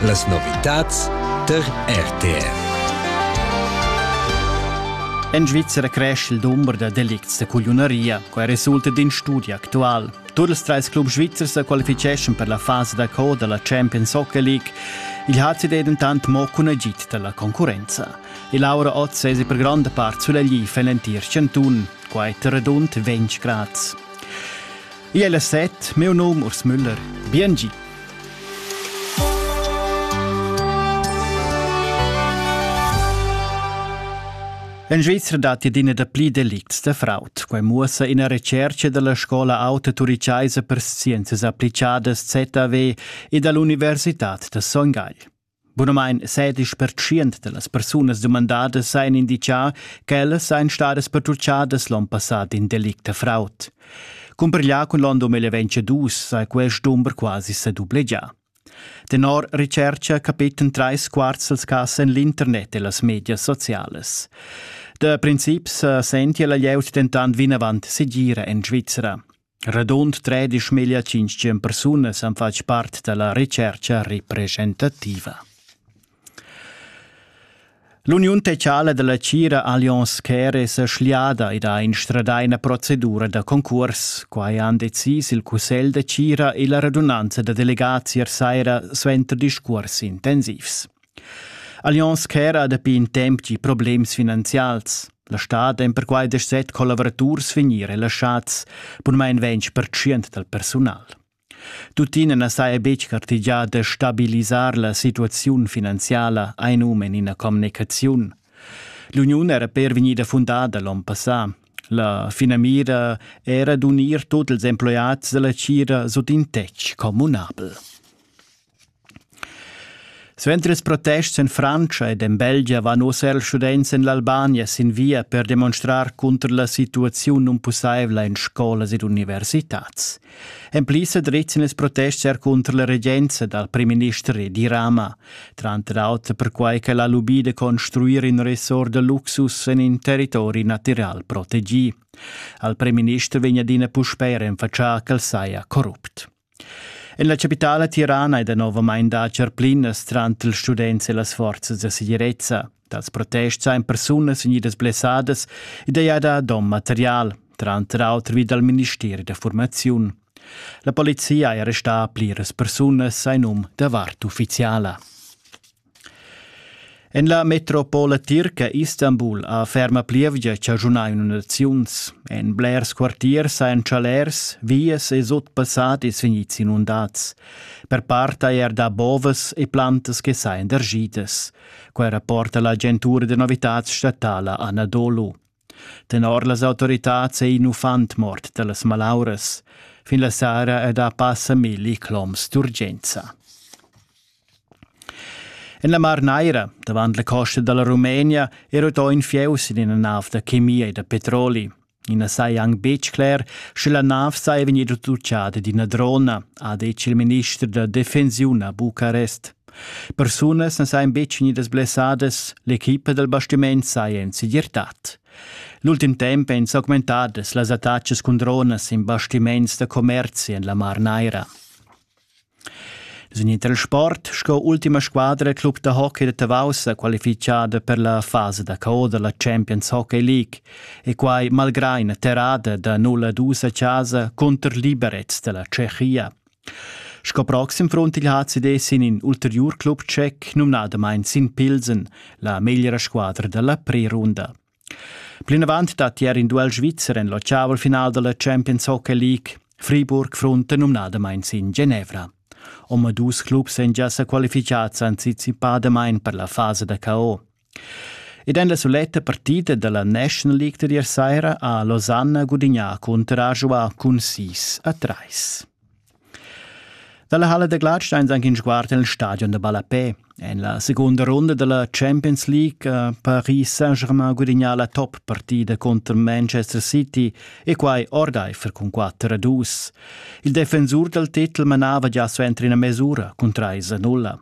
Las novitads tar RTR. En Svizzera cresce il dumber da delicts da cugliunaria, quai resulta d'in studi actual. Tur ils trais clubs svizzers sa qualificeschan per la fasa da co da la Champions Hockey League. Il HCD è dentant mo cun agid da la concurrenza. E Laura Otz è per gronda part sulla glif en l'entir chantun, quai tar radund 20 grads. Io è la set, meu nom Urs Müller. Biengi. En Svizzera datti adina dapli delicts da fraud. Quai muossa ina recerca dalla scola auta turichaisa per scienzas applicadas ZAW e dall'Universitad da Son Gagl. Bunamain sedisch pertschient da las persunas dumandadas hajan inditgà ch'ellas sajan stadas pertutgadas l'onn passà d'in delict da fraud. Cumparglià cun l'onn 2022 saja quest dumber quasi sa dublegià. Tenor Recerca capitan trais quarts dals cas en l'internet e las medias socialas. Da princip sa sentia la glieud dentant vinavant segira en Svizra. Radund tredisch meglio tschintg persunas han fatg part dalla retscherca representativa. L'Uniun Tecala della Cira Allianz Care è schliada ed ha instradà ina procedura da concurs. Quai han decis il Cussegl de Cira e la radunanza da delegazias saira suenter discurs intensivs. Allianz ch'era dapi in temp gi problems finanzials. La stad èn perquai deset collavuraturs vegnì relaschads, bunmain ventg pertschient dal persunal. Tuttina na saja betg gartegià da stabilisar la situaziun finanziala ein um en ina communicaziun. L'uniun era per vegnida fundada l'onn passà. La finamira era d'unir tut ils emploiads dalla tgira sut in tetg communabel. Suenter ils protests en Frantscha ed en Belgia van oz er students en l'Albania sin via per demonstrar cunter la situaziun nunpussaivla en scolas ed universitads. En pli sa drizzan ils protests er cunter la regenza dal primminister Edi Rama, tranter auter perquai ch'el ha lubì da construir in ressort da luxus en in territori natiral protegì. Al primminister vegn adina puspè renfatschà ch'el saja corrupt. En la chapitala tirana è danovamain dà charplinas tranter ils students e las forzas da segirezza. Dals protests èn persunas vegnidas blessadas ed hai dà donn material, tranter auter vi dal ministeri da formaziun. La polizia è restà pliras persunas en num da vart uffiziala. En la metropola tirca Istanbul ha ferma plievgia chaschunà inundaziuns. En blers quartiers hajan chalers, vias e sut passadis vegnids inundads. Per part haja er dà bovas e plantas che sajan derschidas. Quai rapporta l'agentura da novitads statala Anadolu. Tenor las autoritads ei in uffant mort dallas malauras. Fin la sera ed ha passa milli cloms d'urgenza. En la Mar Naira, davant la costa dalla Rumenia, era uto in fieus in ina nav da chemia e da petroli. I na sai anc betg cler, sche la nav sei vegnida tutgada d'ina drona, ha detg il minister da defensiun a Bucarest. Persunas na sajan betg vegnidas blessadas, l'equipa dal bastiment saja en segirtad. L'ultim temp èn s'augmentadas las attacas cun dronas in bastiments da commerzi en la Mar Naira. Sin il transport sco ultima squadra club da hockey da Tavau sa qualifichada per la fasa da co da la Champions Hockey League e quai malgrà ina terrada da 0 a 2 a casa cunter liberets da la Tschechia. Sco proxim front il HCD sin in ulteriur club tschec, numnadamain sin Pilsen, la meglra squadra da la prerunda. Plinavant dat ier in duel svizzer en l'ottaval final da la Champions Hockey League. Friburg frunta numnadamain sin Genevra. Omadus clubs èn gia sa qualificads anticipadamain per la fasa da KO. Ed en la suletta partida dalla National League da ier saira ha Losanna gudignà cunter Ajoa cun 6 a 3. Dalla Halle da Gladstein anche in sguard nel stadion da Ballapè. En la seconda runda della Champions League eh, Paris Saint-Germain gudignà la top partida contro Manchester City e quai ordeifer cun 4 a 2. Il defensur dal titel manava già suenter ina mesura cun 3 a 0.